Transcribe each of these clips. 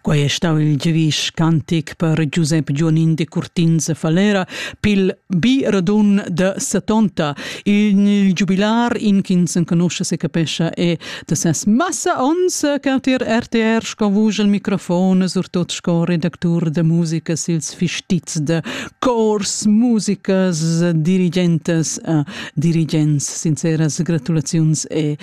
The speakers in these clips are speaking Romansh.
Quei ei stau il giavisch cantic per Giusep Gionin Decurtins e Falera pil bi radun de setonta. Il giubilar, in ch'ins enconusce se capescha, è de ses massa ons cautir RTR sco vusch al microfon, surtot sco redactur de musica sils fistizs de cors, musicas, dirigentes e dirigents. Sinceras gratulaziuns e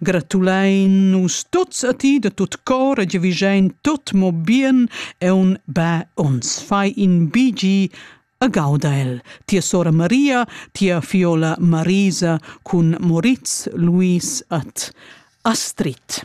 Gratulein nus tuts a ti da tut cor e giavischein tut mo bien e un bè ons. Fai in bigi a Gaudael. Tia sora Maria, tia fiola Marisa cun Moritz Luis at Astrid.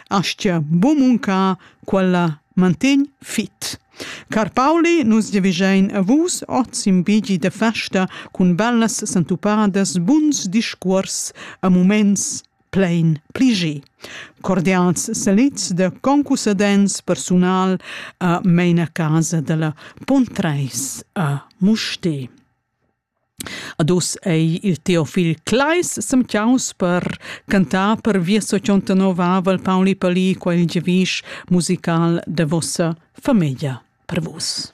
Aschia bu muncar quella mantegn fit. Car Pauli, nus devigein a vus oz in bigi de festa cun bellas sentupadas buns discuors a moments plein pligi. Cordials salits de concussadents personal a meina casa della Pontreis a Musti. Ad uss ei il Teofil Kleis semtgaus per cantar per via sociontanovavel Pauli Pali quel giavisch musical de vossa famiglia per vus.